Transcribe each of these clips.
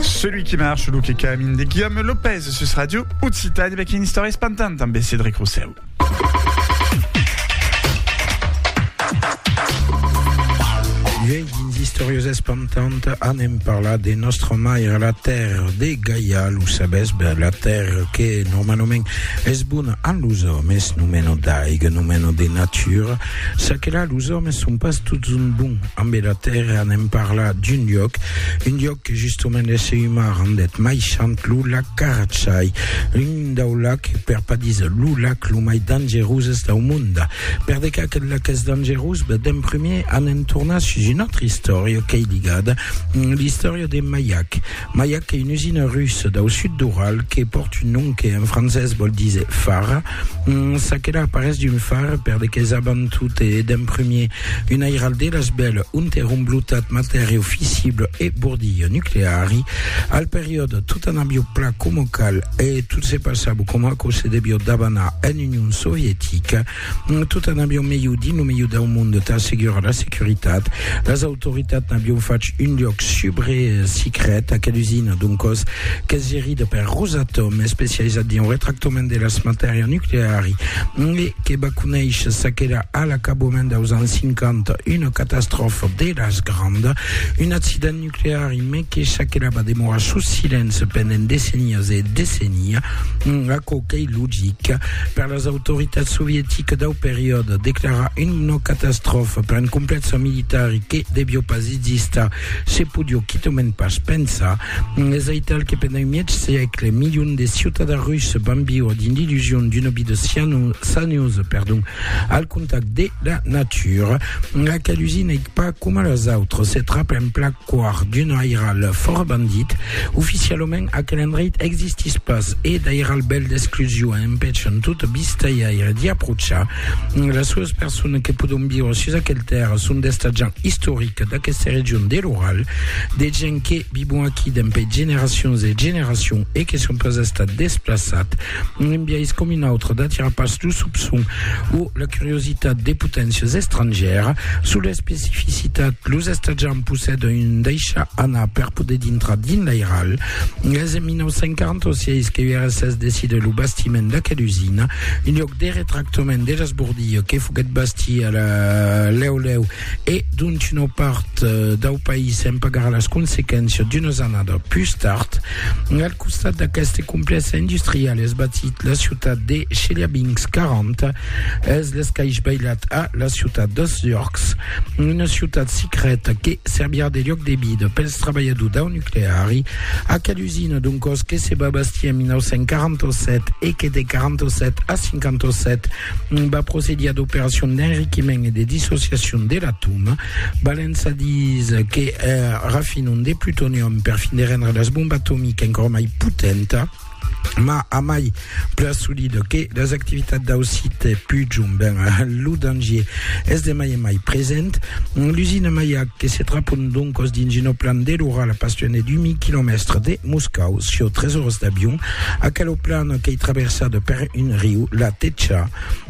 Celui qui marche, lo qui camine de Guillaume Lopez sus Radio Occitane avec une histoire espantante en Cédric Rousseau. Vieille historieuse espantante en hem parlat de notre mère la terre de Gaïa, lo sabes, ben, la terre que normalement es bonne en los hommes, nous menons d'aigue, nous menons de nature, ça que là, los hommes sont pas tous un bon Amb era tèrra anem parlar d'un lloc, un lloc que justement l'èsser umà rendèt mai sant, lo lac Carachai, l'un dau lac, per pas díser lo lac, lo mai dangeroses dau monde. Per de qué aquel lac es dangerós? Ben, d'en primier anem tornar sus una autra istòria qu'ei ligada, l'istòria de Maiac. Mas i a que una usina russa dau sud d'Ural que pòrt un nom que en francés vòl díser fara, ça que la aparés d'un far per de qu'es abant tot e d'en prumèr un airal de las bèl ont èra omblotat matèriau fissible e bordilha nucleari. Al periòde, tot anabió pla coma cal e tot se passabó coma aquò se devió dabanar en Union Sovietica. Tot an avion melhor dins lo melhor dau monde tà assegurar la securitat. Las autoritats n'avion fach un luòc subre secret a quel usina, doncòs, qu'es gerida per Rosatom, especializat dins lo retractament de las matèria nucleari, e que va conéisher s'aquela a l'acabament daus ans 50 una catastròfa de las grandas, un accident nuclear. crear un mètge çaquelà va demorar sus silenci pendent decennias e decennia, aquò qu'ei logic. Per las autoritats sovieticas dau periòde, declarar una catastròfa per un complèxe militar e que devió pas existar se podió quitament pas pensar. Es aital que pendent un mièg sègle, milions de ciutadans russes van viure dins l'illusion d'una vida saniosa al contacte de la natura. Aquel usin ei Pas coma las autres, se trap en plac quart d'una aira le Fòrt Bandit. Oficialament, aquel endreit existís pas e d'airal bèl d'exclusion empèchan tot vistaiaire d'i aprochar. Las solas personas que podon viure sus aquel tèrra son d'estatjants istorics d'aquesta region de l'Oral, de gents que vivon aquí dempè generacions e generacions e que son pas estats desplaçats Un embiais com un autre d'atirar pas lo sopçon o la curiositat de poténcias estrangèras sus l'especificitat, los estatjants possèdan un deishar anar per poder dintrar dins l'airal. Es en 1946 que URSS decida lo bastiment d'aquela usina, un luòc de retractament de l'esbordilha que foguèt bastia lèu lèu e dont una part dau país en pagarà las consequéncias d'unas annadas pus tard. Al costat d'aqueste complèxe industrial es batit la ciutat de Chelyabinsk, 40 es l'escaish bailat a la ciutat d'Ostiorks, una ciutat secreta que servirà de lloc de vida pels trabalhadors dau nucleari. Aquela usina d'un còs que se va bastir en 1947 e que de 47 a 57 va procedir a d'operacion d'enriquiment e de dissociacion de l'atòm, valent sa dis que rafinon de plutonium per fin de rendre las bombas atomiques encòra mai potenta, ma a mai plan solid que las activitats dau site Pujum, ben lo dangier es de mai en mai present. L'usina Mayak, que se trapon doncos dins una plan de l'Oral a pas luènh de 2000 quilomèstres de Moscau, sieu tres oras d'avion, Aquela plana qu'ei traversada per un riu, la Techa,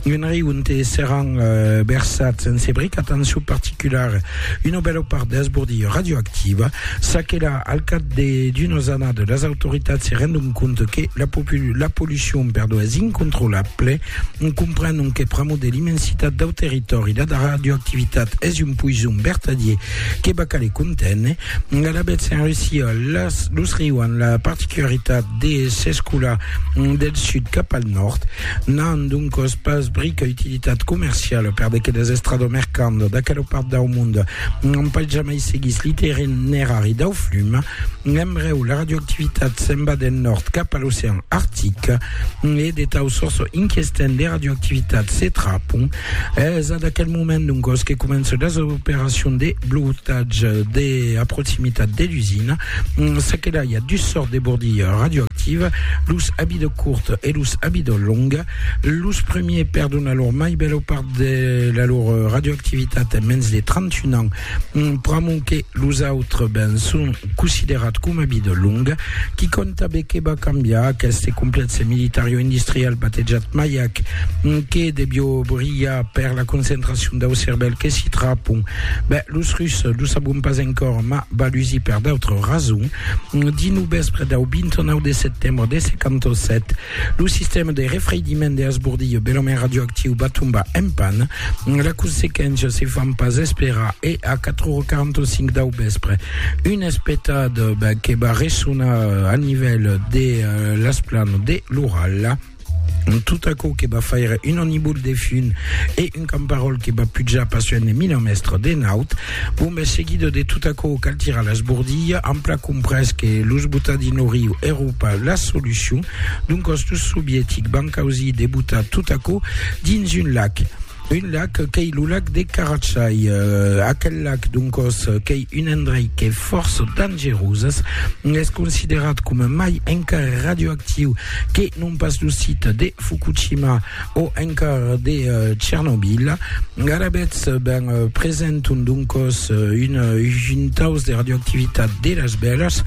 un riu onte seràn versats en se bric, atencion particulara, una bèla part d'esbordilha radioactiva. Çaquelà, al cap d'unas annadas, las autoritats se rendon compte que la pollucion es incontrolable, comprenon que pr'amor de l'immensitat dau territòri, la radioactivitat es un poison vertadier que va caler conténer. Alavetz, en Russia, las, los rius an la particularitat de s'escolar del sud cap al nòrd. N'an doncòs pas brica utilitat comerciala per d'aqueles estrada mercant d'aquela part dau mond. N'an pas jamai seguís l'itinerari dau flum. Embrèu, la radioactivitat se'n va del nòrd cap a l'ocean artic e de tau sòrç inquestent de radioactivitat se trapon Es ad aquel moment, doncos, que començan las operacions de blotatge a proximitat de l'usina. S'aquelai a dus sòrts de bordilh radioactiv, los abidò curt e los abidò long. Los premiers perdon la lor mai bèla part de la lor radioactivitat en mens de 31 ans. Pr'amont que los autres ben son considerats coma vida longa, qui compta be que va cambiar aqueste complèxe militario-industrial batejat Mayak, que devió brilhar per la concentracion dau cervèl que s'i trapon? Ben, los Russes, lo sabon pas encòra, mas va lusir per d'autres rasons. Dinou vèspre dau 29 de setembre de 57, Lo sistèma de refreidiment de Asbordillo, belament radioactiu, va tombar en pan. La consequéncia se fan pas esperar e a 4h45 dau vèspre, un espetat que va ressonar al nivèl de las planas de l'Ural, tot aquò que va faire un anibol de fum e un camparòl que va pujar pas soen de 1000 mètres de naut, Bon, ben, seguido de tot aquò, cal tirar las bordillas, ampla comprés que los botadinoriu Euròpa la solucion, doncas los sovietics van causir de botar tot aquò dins un lac, un lac qu'ei lo lac de Karachay, aquel lac, doncas, qu'ei un endrei qu'es fòrça dangerós, es considerat coma mai encara radioactiu que non pas lo site de Fukushima, o encara de Tchernobyl. Garabets ben presenton doncos un juntaus de radioactivitat de las bèlas,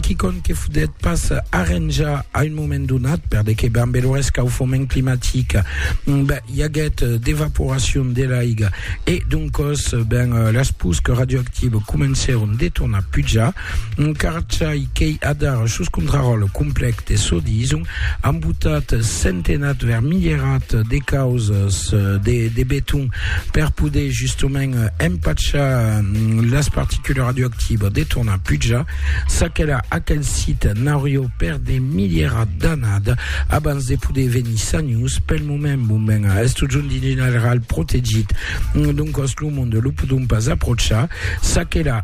quicòm que fodet pas arranjar a un moment donat, per de que ben lo rescaufoment climatic ben, i aguèt d'evaporacion de l'aiga e doncos ben las pusques radioactives comencèron de tornar pujar. Un carchai qu'ei adar sus contraròtle complèc de çò dison, ambotat, centenat, vermilherat de causas de, de beton per poder justement empachar las particules radioactivas de tornar pujar. S'aquela aquel sit n'aurió per de milherat d'anada abans de poder venir sanhus. Pel moment, bon ben, es totjorn dins un areal protegit, doncòs lo monde lo podon pas aprochar. S'aquela